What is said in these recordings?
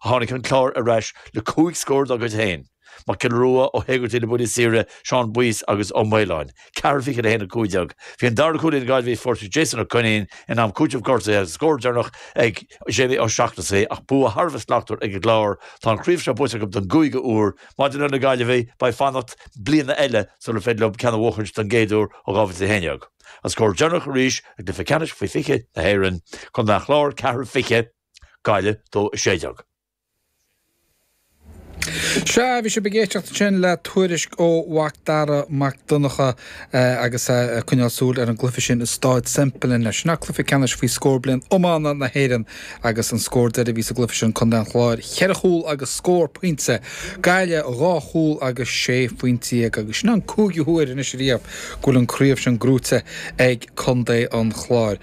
Tháinig an Clár ar ais le cúig scór dá gcuid féin, Mac Giolla Rua, Ó hÉigeartaigh, le buillí saoire, Seán Boyce agus Ó Maoláin, ceathair, 20 le 1-15. Bhí an dara cúl na Gaillimhe faighte ag Jason Ó Coinín in am cúitimh gortuithe agus an scór deireanach ag Jamie Ó Seachnasaigh ach bua thar a bheith slachtmhar ag an gClár. Tá an chraobh seo buaite acu don gcúigiú uair. Maidir le na Gaillimhigh, beidh fanacht bliana eile sular féidir leo ceann a bhuachaint don gcéad uair ó 2011. An scór deireanach arís i gCluiche Ceannais Faoi 20 na hÉireann, Contae an Chláir, ceathair, 20, Gaillimh dó 16. Sea, bhí sibh ag éisteacht ansin le tuairisc ó Mhacdara Mac Donncha agus é ag coinneáil súil ar an gcluiche sin i Stáid Semple inné. Sin é cluiche ceannais faoi scór bliain iomána na hÉireann agus an scór deiridh a bhí sa gcluiche sin, Contae an Chláir cheithre chúl agus scór pointe, Gaillimh dhá chúl agus sé phointe dhéag agus sin an cúigiú huair anois ariamh go bhfuil an craobh sin gnóite ag Contae an Chláir.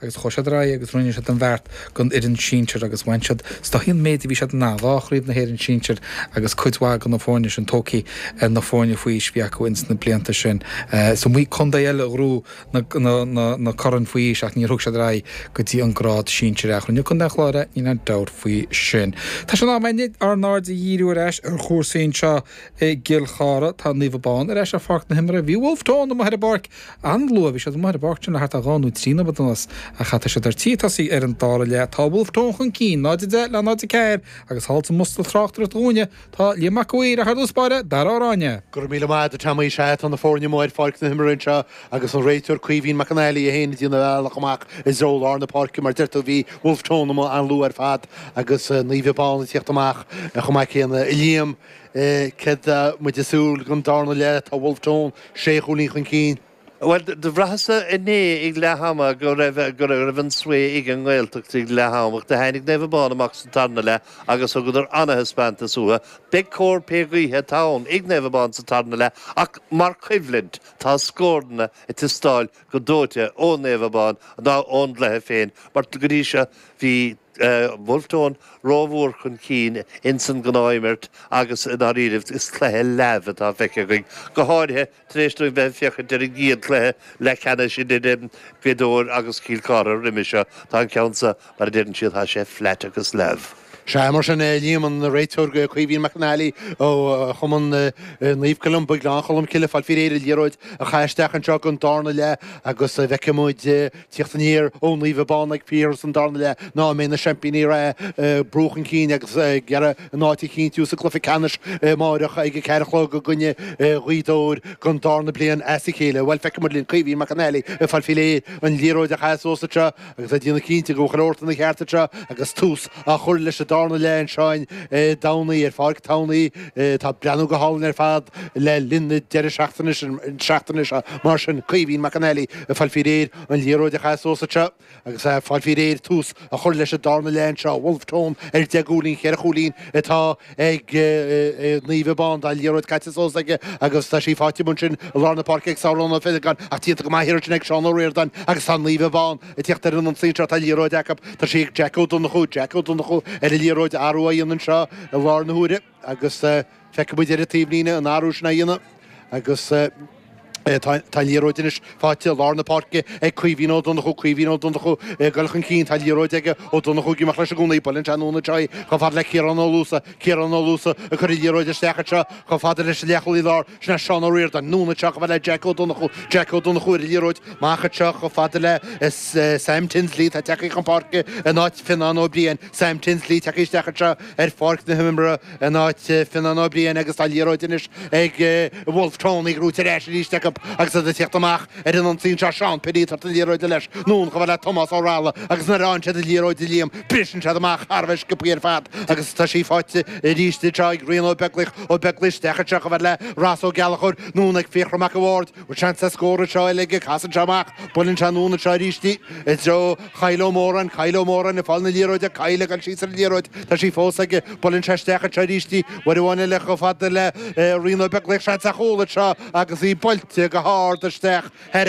Agus chuaidh siad ar aghaidh agus rinne siad an beart don fhoireann sinsir agus bhain siad is dóichí an méid a bhí siad in ann, dhá chraobh na hÉireann sinsir agus cuid mhaith de na foirne sin tógthaí ar na foirne faoi aois a bhí acu ins na blianta sin. Is iomaí contae eile a ghnóthaigh na coirn faoi aois ach níor thug siad ar aghaidh go dtí an grád sinsir ach rinne Contae an Chláir é, níl aon dabht faoi sin. Tá sé in am againne ár n-aird a dhíriú ar ais ar chúrsaí anseo i gCill Chartha. Tá Naomh Abán ar ais ar pháirc na himeartha. Bhí Wolfe Tone amuigh ar an bpáirc! An-luath, bhí siad amuigh ar an bpáirc sin le thart ar dhá nó trí nóiméad anuas ach tá siad ar tí tosaí ar an dara leath. Tá Wolfe Tone chun cinn, 0-10 le 0-4, agus thall sa mbosca tráchtaireachta dhúinne tá Liam Mac an Mhaoir, ach ar dtús báire Darragh Ó Ráinne. Go raibh míle maith agat a Tommy. Sea, tá na foirne amuigh ar pháirc na himeartha anseo agus an réiteoir Caoimhín Mac Fhionnghaile ag déanamh a bhealach amach i dtreo lár na páirce. Mar a deir tú, bhí Wolfe Tone amuigh an-luath ar fad agus Naomh Abán ag tíocht amach chomh maith céanna. A Liam, céard tá muid ag súil don darna leath? Tá Wolfe Tone. 6 chúilín chun cinn. Bhuel, do bhraitheas-sa inné ag leath ama go raibh, go raibh, go raibh an svae ag an nGaeltacht ag leath am ach do tháinig Naomh Abán amach sa tarna leath agus thugadar ana-thaispeántas uathu. Beidh cóir pé gaoithe atá ann ag Naomh Abán sa tarna leath ach mar choimhlint tá scóranna ag teastáil go dóite ó Naomh Abán ná ón gcluiche féin mar go dtí seo bhí Wolfe Tone rómhór chun cinn ins an ghnáthimirt agus i ndáiríribh is cluiche leamh atá feicthe againn, go háirithe tar éis dúinn bheith ag féachaint ar an gcéad chluiche leath ceannais idir Gaoth Dobhair agus Cill Cartha roimis seo. Tá an ceann seo, mar a deireann siad, tá sé flat agus leamh. Sea, mar sin, Liam, an réiteoir Caoimhín Mac Fhionnghaile ó chumann Naomh Columba, Gleann Cholm Cille, ag fáil faoi réir an liathróid a chaitheamh isteach anseo don darna leath agus an bhfeicfidh muid, teacht aniar ó Naomh Abán ag fíorthús an darna leath nó an mbeidh na seaimpíní reatha ag brú chun cinn agus ag iarraidh a n-áit a chinntiú sa gcluiche ceannais amáireach ag a ceathair a chlog i gcoinne Ghaoth Dobhair don darna bliain as a chéile. Bhuel, feicfidh muid linn. Caoimhín Mac Fhionnghaile ag fáil faoi réir an liathróid a chaitheamh suas anseo agus ag déanamh cinnte go bhfuil chuile shórt ina cheart anseo agus tús á chur leis an dárna leath anseo an Domhnaigh ar Pháirc Tamhnaí. atá ag breathnú go hálainn ar fad le linn na deireadh seachtaine na seachtaine seo mar sin Caoimhín Mac an Fhailigh ag fáil fí réir an liathróid a chaith suas anseo agus ag fáil fí réir tús a chur leis an dárna leath anseo Bhulf Tón ar deich gcúilín cheithre chúilín atá ag Naomh Abán tá an liathróid caite suas aige agus tá sí faighte amuigh ansin i lár na páirce ag Sauron Ó Feilegáin ach déanta go maith an iarracht sin ag Seán Ó Riordáin agus tá Naomh Abán Ag teacht ar an ionsaí anseo tá an liathróid acu. Tá sí ag Jack Ó Donnchú. Jack Ó Donnchú ar an liathróid. Athrú á dhéanamh anseo i lár na huaire agus feicfidh muid ar an taobhlíne an athrú sin á dhéanamh agus tá an liathróid anois faighte i lár na páirce ag Caoimhín Ó Donnchú. Caoimhín Ó Donnchú ag dul chun cinn. Tá an liathróid aige. Ó Donnchú ag imeacht leis i gcónaí. Buaileann sé anonn anseo í chomh fada le Ciarán Ó Luasa. Ciarán Ó Luasa ag cur an liathróid isteach anseo chomh fada leis an leathchúlaí lár. Sin é Seán Ó Riordáin, anonn anseo chomh fada le Jeaic Ó Donnchú, Jeaic Ó Donnchú ar an liathróid, amach anseo chomh fada le Sam Tinsley atá ag teacht chun páirce in áit Fionnán Ó Briain, Sam Tinsley ag teacht isteach anseo ar pháirc na himeartha in áit Fionnán Ó Briain agus tá an liathróid anois ag Bhulf Tón ar ndóigh ar ais arís acu agus iad ag tíocht amach. ar an ionsaí anseo Seán Penn Iad thart an liathróid leis anonn chomh fada le Tomás Ó Rathile agus nuair a fhaigheann siad an liathróid do Liam briseann siad amach thar a bheith sciopthaí ar fad agus tá sí faighte arís anseo ag Rian Ó Beaglaoich Ó Beaglaoich isteach anseo chomh fada le Ross Ó Gallchóir anonn ag Fiachra Mac a' Bhaird bhfuil seans scór anseo uilig aige casann sé amach buaileann sé anonn anseo arís i dtreo Kyle Ó Móráin, Kyle Ó Móráin ag fáil na liathróide, Kyle ag dul síos ar an liathróid, tá sí fós aige, buaileann sé isteach anseo arís í, Muire Bhán Liath chomh fada le Rian Ó Beaglaoich seans ar chúl anseo agus í buailte go hard isteach thoir,